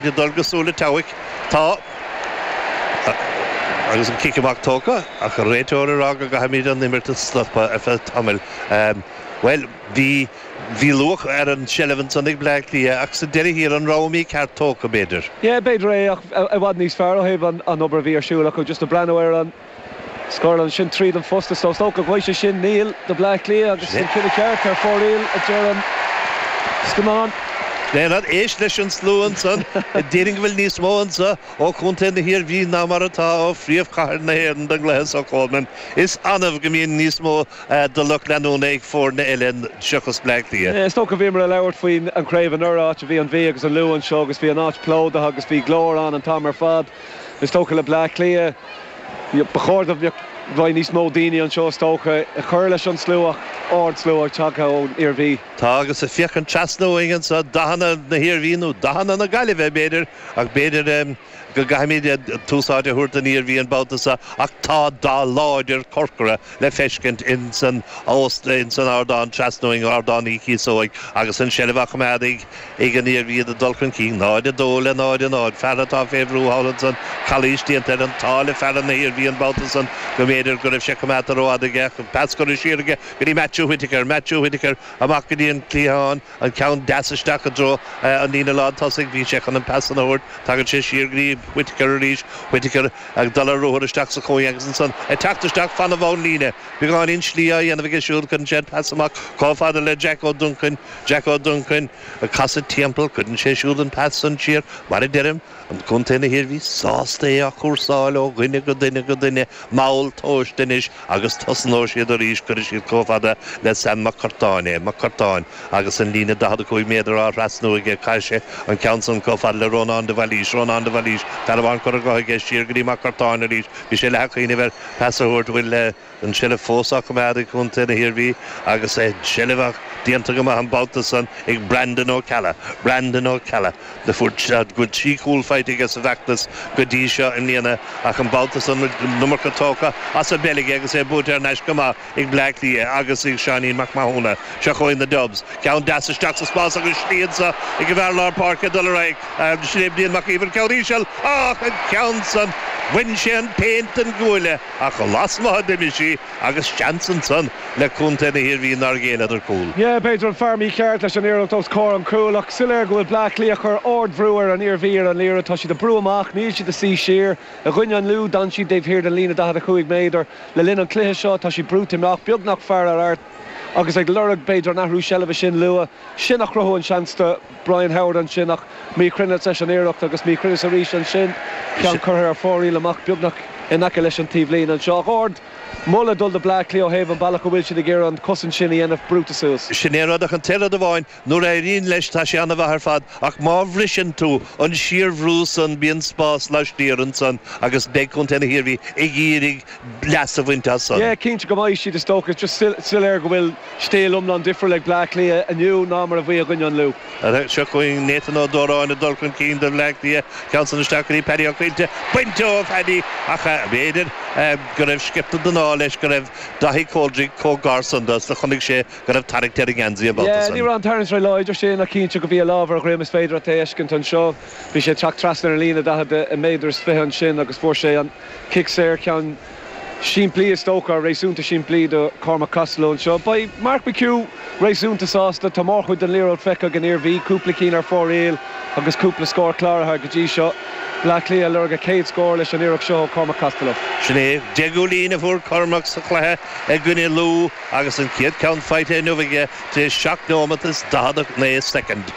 Go dtí an cúl aige. Tá agus an cic amach tógtha ach an réiteoir ag rá go gcaithfimid an imirt a stopadh ar feadh tamaill. Bhuel, bhí, bhí luach ar an tseilbh ansan ag Bleá Cliath ach sa deireadh thiar an raibh an rogha mícheart tógtha, b'fhéidir? Yeah, b'fhéidir é ach i bhfad níos fearr ó thaobh an obair a bhí ar siúl acu just ag breathnú ar an, Scór ansin tríd an post is thóg sé sin Niall do Bhleá Cliath agus an ceann ceart ar fóraoil a deir an scáileán. Lennard, éist leis an slua ansan ag déarfainn go bhfuil níos mó anseo ó chontae na hIarmhí ná mar atá ó phríomhchathair na hÉireann don gcluiche so Coleman. Is annamh go mbíonn níos mó de lucht leanúna ag foirne eile seachas Bleá Cliath. Is dócha bhíomar ag labhairt faoin an chraobh anuraidh, áit a bhí an Mhí agus an Lú anseo agus bhí an áit plódaithe agus bhí glór ann an t-am ar fad. Is dócha le Bleá Cliath, ba chóir do bheith níos mó daoine anseo is dócha, ag cur leis an slua ach ardslua tagtha ón Iarmhí. Tá agus ag féachaint trasna uainn anseo, dathanna na hIarmhí nó dathanna na Gaillimhe b'fhéidir, ach b'fhéidir go gcaithfimid tús áite a thabhairt don Iarmhí an babhta seo ach tá dath láidir corcra le feiscint in san ardán trasna uainn, Ardán Uí Chíosóig agus an tseilbh á choimeád ag. Ag an Iarmhí, iad ag dul chun cinn, 0-2 le 0-0. Fear atá fé bhrú thall ansan, calaois déanta air. An t-ádh le fear na hIarmhí an babhta san go mb'fhéidir go raibh sé coimeádta ró-fhada aige ach an pas curtha siar aige go dtí Matthew Whitaker. Matthew Whitaker amach go dtí an cliathán, an ceann deas isteach i dtreo an líne lán tosaigh. Bhí sé chun an pas san a thabhairt. Tagann sé siar go dtí Whitaker arís. Whitaker ag dul ar ruathar isteach sa chúinne agus ansan ag teacht isteach fan na bunlíne. Beagáinín slí á dhéanamh aige siúd, cuireann sé an pas amach comh fada le Jack Ó Duncain. Jack Ó Duncain ag casadh timpeall, cuireann sé siúd an pas san siar, mar a deirim, Contae na hIarmhí sásta é a chúrsáil ó dhuine go duine go duine, mall tomhaiste anois agus tosnóidh siad arís cuireann siad comh fada le Sam Mac Curtáin é, Mac Curtáin agus an líne 45 méadar á thrasnú aige, caitheann sé an ceann san comh fada le Rónán de Bhailís, Rónán de Bhailís, fear amháin curtha de aige, siar go dtí Mac Curtáin arís, bhí sé leath ag cuimhneamh ar pas a thabhairt, bhuel, leis. an tseilbh fós á coimeád ag Contae na hIarmhí agus a shlí amach déanta go maith an babhta san ag Brandon Ó Ceallaigh, Brandon Ó Ceallaigh go bhfuil trí chúl faighte aige sa bhfeachtas go dtí seo i mbliana ach an babhta san an iomarca tógtha as an bpeil aige agus é buailte thar n-ais go maith ag Bleá Cliath agus ag Seáinín Mac Mathúna. Seo chugainn na Dubs. Ceann deas isteach sa spás agus slí anseo ag an bhfear lár páirce dul ar aghaidh. Sin é Brian Mac Íomhair, ceann íseal, ach an ceann san bhain sé an phéint den chuaille. Ach lasmuigh d'imigh sí agus seans ansan le Contae na hIarmhí nár ghéilleadar cúl. Yeah, b'fhéidir an fear mícheart leis an iarracht os comhair an chúil, ach soiléir go bhfuil Bleá Cliath ag cur ard-bhrú ar an Iarmhí ar an liathroid. Tá siad ag brú amach, níl siad ag suí siar. I gcoinne an Lú, d'fhan siad dtaobh thiar den líne 45 méadar. Le linn an cluiche seo, tá siad brúite amach, beagnach fear ar fhear, agus ag lorg b'fhéidir an athrú seilbhe sin luath, is sin a chruthú an seans do. Brian Howard ansin ach míchruinneas leis an iarracht agus míchruinneas arís ansin. Ceann curtha ar fóraoil amach beagnach in aice leis an taobhlíne anseo ach ardmholadh ag dul do Bleá Cliath ó thaobh an bealach a bhfuil siad ag iarraidh an cosaint sin a dhéanamh brúite suas. Sin é rud ach an t-aon rud amháin nuair a éiríonn leis tá sé ana mhaith ar fad ach má bhriseann tú an síorbhrú san bíonn spás laistiar ansan agus beidh Contae na hIarmhí ag iarraidh leas a bhaint as san. Yeah, cinnte go mbeidh siad is dócha. Is just soiléir go bhfuil stíl iomlán difriúil ag Bleá Cliath inniu ná mar a bhí i gcoinne an Lú. Seo chugainn Nathan Ó Dóráin ag dul chun cinn do Bhleá Cliath. Ceann san isteach go dtí Paddy Ó Caoilte. Bainte ó Phaddy ach b'fhéidir go raibh sciorta den ádh leis go raibh Daithí Coldrick chomh gar san dó is do chonaic sé go raibh tarraingt ar an ngeansaí an babhta san. Yeah, ní raibh an tarraingt róláidir ansin ach cinnte go bhí a lámh ar a dhroim is féidir leat é a fheiscint anseo. Bhí sé ag teacht trasna ar an líne daichead, deich méadar is fiche ansin agus fuair sé an. Cic saor, ceann simplí is dócha, réasúnta simplí do Chormac Costello anseo. Beidh Mark McHugh réasúnta sásta. Tá mórchuid den liathróid feicthe ag an Iarmhí, cúpla cinn ar fóraoil agus cúpla scór cláraithe go dtí seo. Bleá Cliath ag lorg a gcéad scór leis an iarracht seo ó Chormac Costello. Sin é deich gcúilín a fuair Cormac sa chluiche i gcoinne Lú agus an chéad ceann faighte inniu aige tar éis seacht nóimeat is 49 soicind.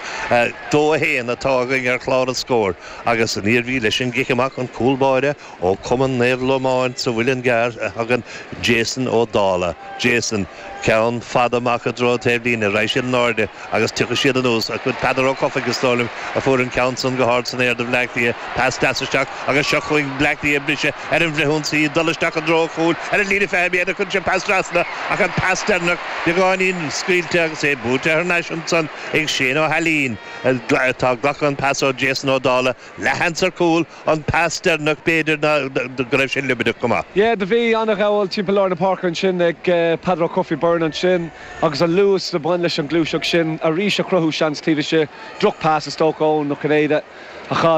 2-1 atá againn ar chlár an scóir. Agus an Iarmhí leis an gcic amach, an cúl báire ó Cumann Naomh Lomáin sa Mhuileann gCearr a thagann Jason Ó Dálaigh. Jason, ceann fada amach i dtreo an taobh líne, raghaidh siad in airde agus tiocfaidh siad anuas, ach b'in Peadar Ó Cofaigh, is dóigh liom, a fuair an ceann san go hard san aer do Bhleá Cliath. Pas deas isteach agus seo chugainn Bleá Cliath ag briseadh ar an bhfrithionsaí, ag dul isteach i dtreo an chúil ar an líne fiche méadar. Cuireann siad pas trasna, ach an pas deireanach beagáinín scaoilte agus é buailte thar n-ais ansan ag Shane Ó hAilín. Atá ag glacadh an pas ó Jason Ó Dálaigh leathan sa cúl, an pas deireanach b'fhéidir ná go raibh sé liobarnach go maith. Yeah do bhí ana ghabhail timpeall lár na páirce ansin ag Peadar Ó Cofaigh Byrne ansin agus an luas a bhain leis an gluaiseacht sin arís a chruthaigh seans taobh istigh, drochphas is dócha Eoin Ó Cinnéide a chaill.